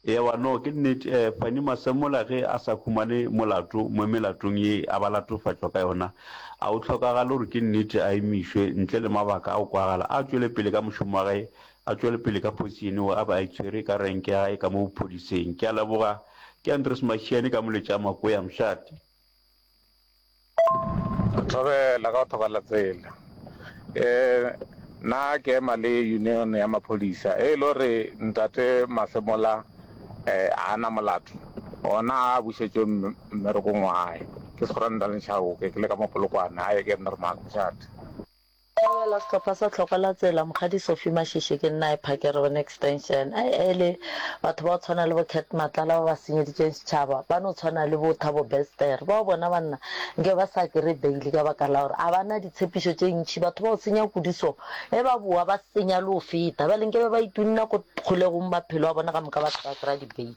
Ewa no ke nnete eh Fanny Masemola ge a sa humane molato mo melatong ye a ba latofatšwa ka yona a go hlokagale gore ke nnete a emišwe ntle le mabaka a go kwagala a tšwele pele ka mošomo wa gae a tšwele pele ka phosiyene wo a be a itshwere ka renke ya gae ka mo bophodiseng ke a leboga ke Andres Mashiane ka moletša Makoya Mshati. Tlogela ka go thobala tsela e na ke ema le union ya maphodisa e le gore ntate masemola a na molato ona a bušetšwe mmerekong wa gae ke segorantane tšhabo ke le ka mapolokwane a ye ke nna re maakgošate. Theogela sehlopha sa tlhoko la tsela, Mokgadi Sophie Mashishi ke nna a e phakere gone Extension. Ai ai le batho ba go tshwana le bo Cat Matlala ba ba senyeditšeng setšhaba, ba no tshwana le bo Thabo Bester bao bona banna nke ba sa kry-e bail ka baka la gore a ba na ditshepišo tše ntši. Batho ba go senya kudu so, ge ba bowa ba senya le go feta. Bjale nke be ba itunna ko kgolegong maphelo a bona ka moka ba se ka kry-a di-bail.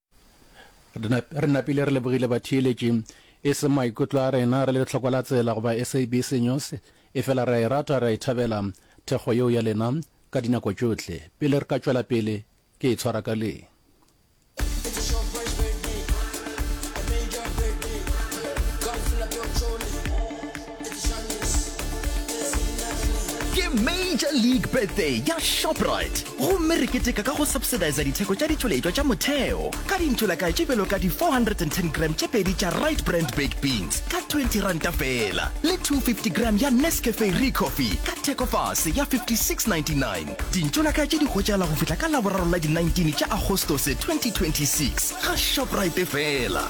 Re napile re lebogile batheeletši. E se maikutlo a rena, re le lehlokwa la tsela goba SABC News, efela re a e rata, re a e thabela thekgo yeo ya lena ka dinako tšohle. Pele re ka tšwela pele, ke e tshwara ka le. Ke Major League Birthday ya Shoprite gomme re keteka ka go subsidisa ditheko tša ditšweletšwa tša motheo ka dintšholakai tše bjalo ka di 410 gram tše pedi tša Rite Brand Baked Beans ka R20 feela le 250 gram ya Nescafe Recoffee ka thekofase ya R56.99. Dintšholakai tše di hwetšagala go fihla ka Laboraro la di 19 tša Agostose 2026 ga Shoprite feela.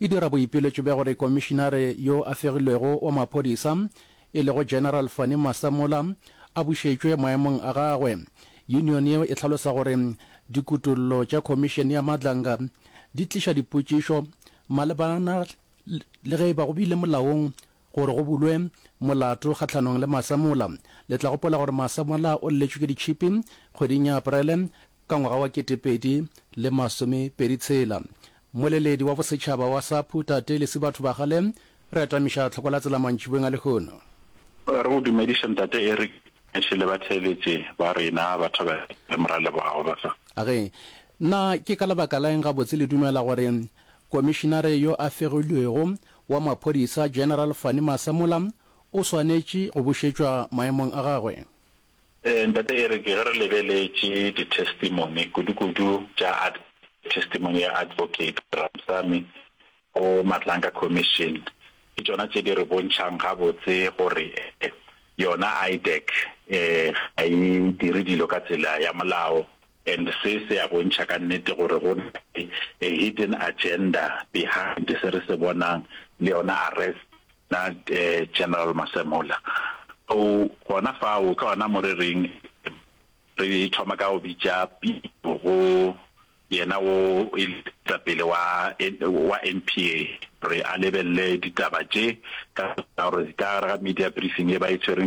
e dira boipiletšo bja gore Komišinare yo a Fegilwego wa Maphodisa, e lego General Fannie Masemola, a bušetšwe maemong a gagwe. Union yeo e hlalosa gore dikutollo tša Komišene ya Madlanga di tliša dipotšišo malebana le ge e ba go bile molaong Gore go bulwe molato kgahlanong le Masemola. Le tla gopola gore Masemola o lletšwe ke ditšhipi kgweding ya Aprele ka ngwaga wa ketepedi le masome pedi tshela. Moleledi wa bosetšhaba wa SAPU, Tate Lesibatho Bagale, re atamiša tlhoko la tsela mantšibeng a lehono. Re go dumediše Ntate Eric Meshe le batheeletši ba rena ba thobela le Moralebogago ba sa. Age, Na ke ka lebaka la eng gabotse le dumela gore Komišinare yo a fegilwego wa Maphodisa General Fannie Masemola o swanetše go bušetšwa maemong a gagwe. Ee, Ntate Eric, ge re lebeletše ditestimony, kudu-kudu tša testimony ya Advocate Ramsamy go Matlanka Commission, ke tšona tše di re bontšhang gabotse gore yona IDAC ga e dire dilo ka tsela ya molao. And se se a bontšha ka nnete gore go na le a hidden agenda behind se re se bonang le yona arrest ya General Masemola. So gona fao ke gona mo re reng re thoma ka go bitša pitšo go yena wo e le moetapele wa wa NPA gore a lebelele ditaba tše ka gore ka gare ga media briefing e ba e tshwereng